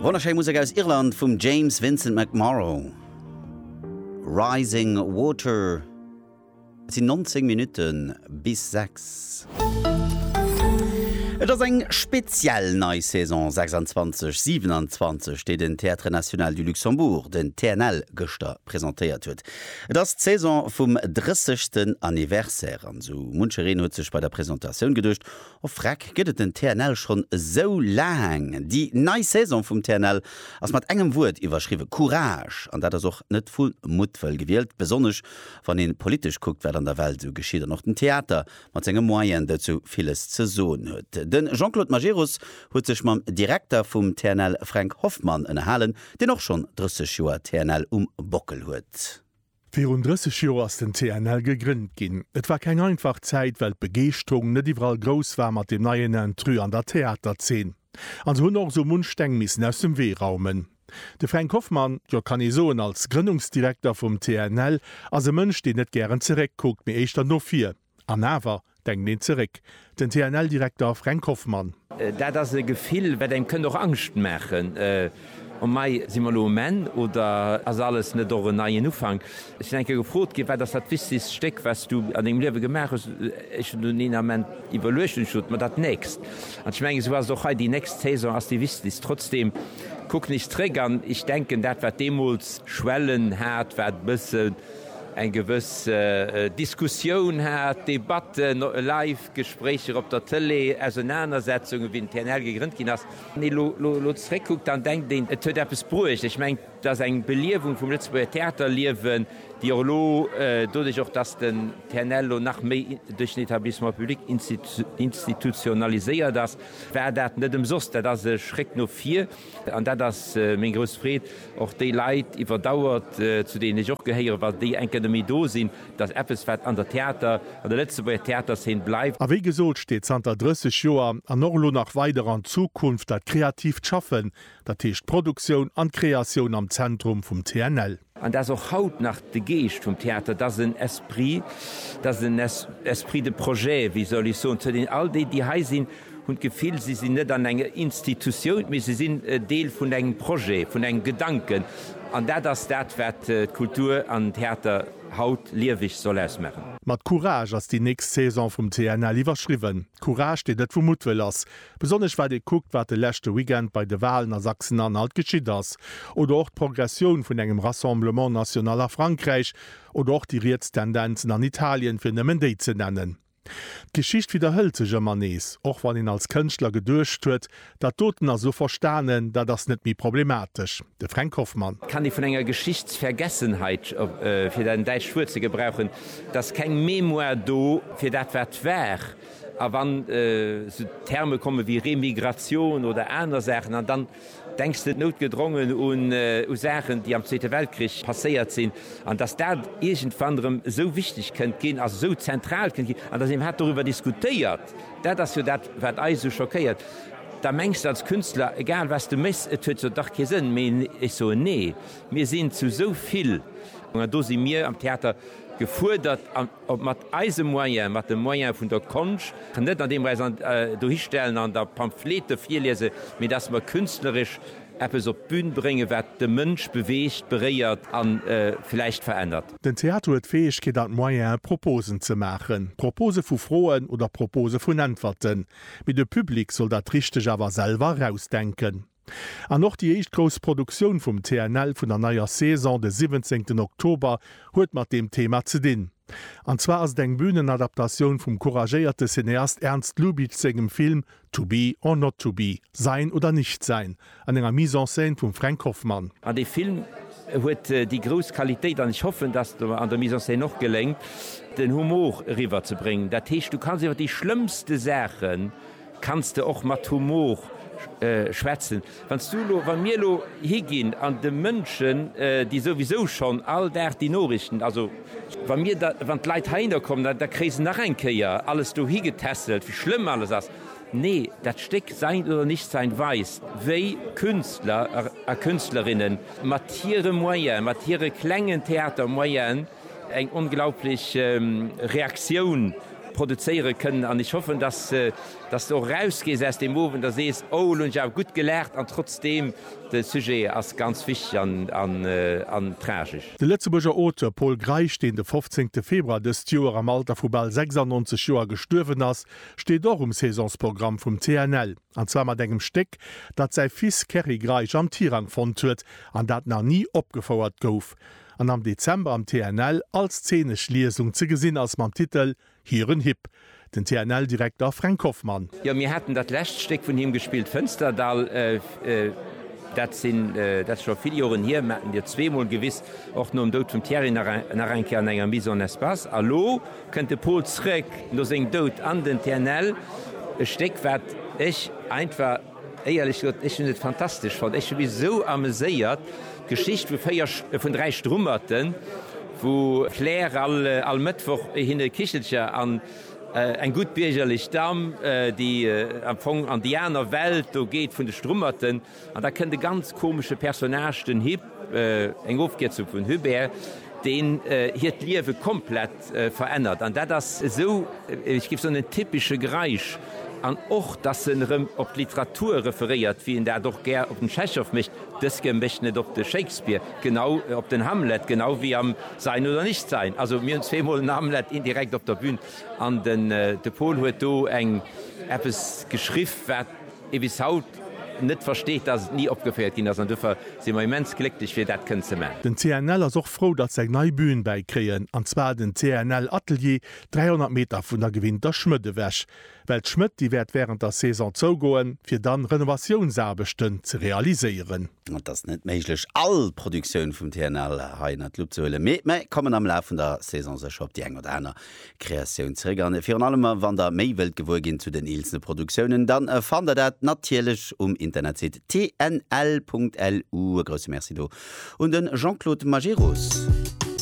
Wonnerschéi Musek aus Irland vum James Vincent McMorrow. Rising Water. Et sinn 19 Minutte bis 6. Et ass eng speziell nei Saison 26, 27, déi den Théâtre National du Luxembourg, den TNL, gëschter presentéiert huet. Et ass d'Saison vum 30. Anniversaire an esou munchereen huet sech bei der Presentatioun geduecht, Och freck, gëtt et den TNL schonn esou laang? Déi nei Saison vum TNL ass mat engem Wuert iwwerschriwwen, Courage. An dat ass och net vu Muttwëll gewielt, besonnesch wann ee politesch kuckt, wat an der Welt esou geschitt an och den Theater mat senge Moyenen dozou villes ze soen huet. De Jean-Claude Majerus huet sech mam Direkter vum TNL Fränk Hoffmann ënnerhalen, deen och schonn 30 Joer TNL um Bockel huet. Virun 30 Joer ass den TNL gegrënnt ginn. Et war keng einfach Zäit, well d'Begeeschterung net iwwerall grouss war mat dem neien Intrus an der Theaterzeen. An se hunn och esou munch Steng missen aus dem Wee raumen. De Fränk Hoffmann, jo, kann ee soen, als Grënnungsdirekter vum TNL, ass e Mënsch, deen net gären zeréck kuckt, mee éischter no vir. An awer, denkt een zeréck, den TNL-Direkter Fränk Hoffmann. Dat ass e Gefill, wat engem kënnt och Angscht maachen, O mei, si mer elo um Enn oder ass alles net och en neien Ufank? Ech sinn eng Kéier gefrot ginn, Wat ass dat wichtegst Stéck, wat s du an dengem Liewe gemaach hues? Ech hunn dunn een Ament iwwerluecht an hu gesot, Ma dat nächst. An ech mengen, esou ass et och hei, Déi nächst Saison ass déi wichtegst. Trotzdem, kuck nees zeréck an ech denken, dat wat deemools Schwellen hat, wat e bësse. eng gewëss Diskussioun hat, Debatten, live Gespréicher op der Tëlee, Ausenanersetzungen, wéi den TNL gegrënnt ginn ass. Wann ee elo zeréckkuckt, dann denkt een, et huet eppes bruecht. Ech mengen, et ass eng Beliewung vum Lëtzebuerger Theaterliewen, déi och elo doduerch, och datt den TNL elo nach méi duerch den Etablissement public institutionaliséiert ass, war dat net ëmsoss. Dat ass e Schréck no vir. An dat ass meng grouss Freed, och déi Leit iwwer Dauer, zu deenen ech och gehéieren, wa déi eng Kéier net méi do sinn, datt eppes, wat an der Theater, an der Lëtzebuerger Theaterszen bleift. A wéi gesot, steet zanter 30 Joer an och elo nach weider an Zukunft dat kreatiivt Schaffen, dat heescht d'Produktioun an d'Kreatioun am Zentrum vum TNL. An dat ass och haut nach de Geescht vum Theater, dat ass en Esprit, dat ass en Esprit de projet, wéi soll ech soen, zu deenen all déi, déi hei sinn, hunn d'Gefill, si sinn net an enger Institutioun, mee si sinn Deel vun engem Projet, vun engem Gedanken. An dat ass dat, wat d'Kultur an den Theater haut lieweg soll ausmaachen. Mat Courage ass déi nächst Saison vum TNL iwwerschriwwen. Courage, deen net vu Muttwëll ass. Besonnesch wat ee kuckt, wat de leschte Weekend bei de Walen a Sachsen-Anhalt geschitt ass, oder och d'Progressioun vun engem Rassemblement national a Frankräich, oder och déi riets Tendenzen an Italien, fir nëmmen déi ze nennen. D'Geschicht widderhëlt sech ëmmer nees, och wann een als Kënschtler geduecht huet, dat doten ass elo verstanen, dat ass net méi problematesch. De Fränk Hoffmann. Kann déi vun enger Geschichtsvergessenheit, fir dat däitscht Wuert ze gebrauchen, et ass keng Mémoire do fir dat wat war. A wann esou Terme komme wéi Remigratioun oder aner Saachen, an dann denks de noutgedrongen u Saachen, déi am Zweete Weltkrich passéiert sinn, an dass dat iergendwann erëm esou wichteg kënnt ginn, also esou zentral kënnt ginn, an dass een hat doriwwer diskutéiert, dat ass jo dat, wat eis esou schockéiert, da mengs de als Künstler, egal wat s de méchs, et huet jo dach kee Sënn méi. Ech soen, nee, mir sinn zu esou vill, an do si mir am Theater gefuerdert. Ob mat eise Moyen, mat de Moyen vun der Konscht, net an deem mer eis dohistellen an da Pamphlete virliese mee datt mer künstleresch eppes op d'Bün bréngen, wat de Mënsch beweegt, beréiert a vläicht verännert. Den Theater huet d'Fäegkeet an d'Moyene Proposen ze maachen, Propose vu Froen oder Propose vun Äntwerten, mee de Public soll dat Richteg awer selwer erausdenken. An och déi éischt grouss Produktioun vum TNL vun der neier Saison, de siwwenzéngten Oktober, huet mat deem Thema ze dinn. An zwar ass et eng Bühnenadaptatioun vum couragéierte Cineast Ernst Lubitsch sengem Film To be or not to be, Sein oder nicht sein, an enger Mise en scène vum Fränk Hoffmann. An dee Film huet déi grouss Qualitéit, an ech hoffen, dass et mer an der Mise en scène och geléngt, den Humor eriwwer ze bréngen. Dat heescht, du kanns iwwer déi schlëmmste Saachen. Kanns de och mat Humor schwätzen? Wann s du elo, wann mir elo higinn an de Mënschen, déi souwisou schonn all Dag déi Noriichten, also wa mir da, wann d'Leit heihinner kommen, da kréie se nach eng Kéier alles dohi getässelt, wéi schlëmm alles ass. Nee, dat Stéck Sein oder Nichtsein weist, wéi Künstler a Künstlerinnen mat hire Moyen, mat hire klengen Theatermoyen, eng onglaublich Reaktioun produzéiere kënnen an ech hoffen, dass s de och erausgees aus deem Owend a sees, oh elo hunn ech awer gutt gelaacht an trotzdeem, de Sujet ass ganz wichteg an tragesch. De Lëtzebuerger Auteur Pol Greisch, deen de 15 Februar dëst Joer am Alter vu bal 96 Joer gestuerwen ass, steet och um Saisonsprogramm vum TNL, an zwar mat engem Stéck, dat säi Fils Kerry Greisch am Tirang fonnt huet an dat nach ni opgefouert gouf. an am Dezember am TNL als zeenesch Liesung ze gesinn ass mam Titel Hiren Hipp, den TNL-Direkter Fränk Hoffmann. Jo, mir haten dat lescht Stéck vun him gespillt, Fënsterdall. Dat sinn, dat ass scho vill Joren hier, mir haten Dir zweemol gewiss, och nom Doud vum Thierry nach eng Kéier an enger Mise en espace. A lo kënnt de Paul zréck no sengem Doud an den TNL, e Stéck wat ech einfach. Éierlech gesot, ech hunn et fantastesch fonnt. Ech hu mech esou ameséiert. D'Geschicht vu véier, vun dräi Strummerten, wou d'Claire all, all Mëttwoch hinne Kichelcher an eng gutt biergerlech Damm, déi am Fong an déi aner Welt do geet vun de Strummerten. An da kënnt e ganz komesche Personnage, den Hip, eng Ofkierzung vun Hubert, deen hiert Liewe komplett, Verännert an dat ass esou, ech géif soen, en typesche Greisch. An och, dass en erëm op d'Literatur referéiert, wéi en dat och gär op den Tschechow mécht, dëske mécht en et op de Shakespeare, genau op den Hamlet, genau wéi am Sein oder nicht sein. Also mir hunn zweemol en Hamlet indirekt op der Bühn an de Paul huet do eng eppes geschriff, wat, ee bis haut net versteet, dass et ni opgeféiert ginn ass an dofir si mer immens glécklech fir dat kënnen ze maachen. Den CNL ass och frou, datt se eng nei Bün bäi kréien, an zwar den CNL Atelier, 300 Meter vun der gewinnter Schmëtt ewech. Well d'Schmëtt, déi wäert wärend der Saison zougoen, fir dann Renovatiounsaarbechten ze realiséieren. Et ass net méiglech, all d'Produktioun vum CNL hei ënner d'Lupp ze huelen, mee mer kommen am Laf vun der Saison sécher op déi eng oder aner Kreatioun zeréck an virun allem wann der méi wëllt gewuer ginn zu den eelzene Produktiounen dann fannt der dat natierlech um Internetsite tnl.lu. E grousse Merci do un den Jean-Claude Majerus.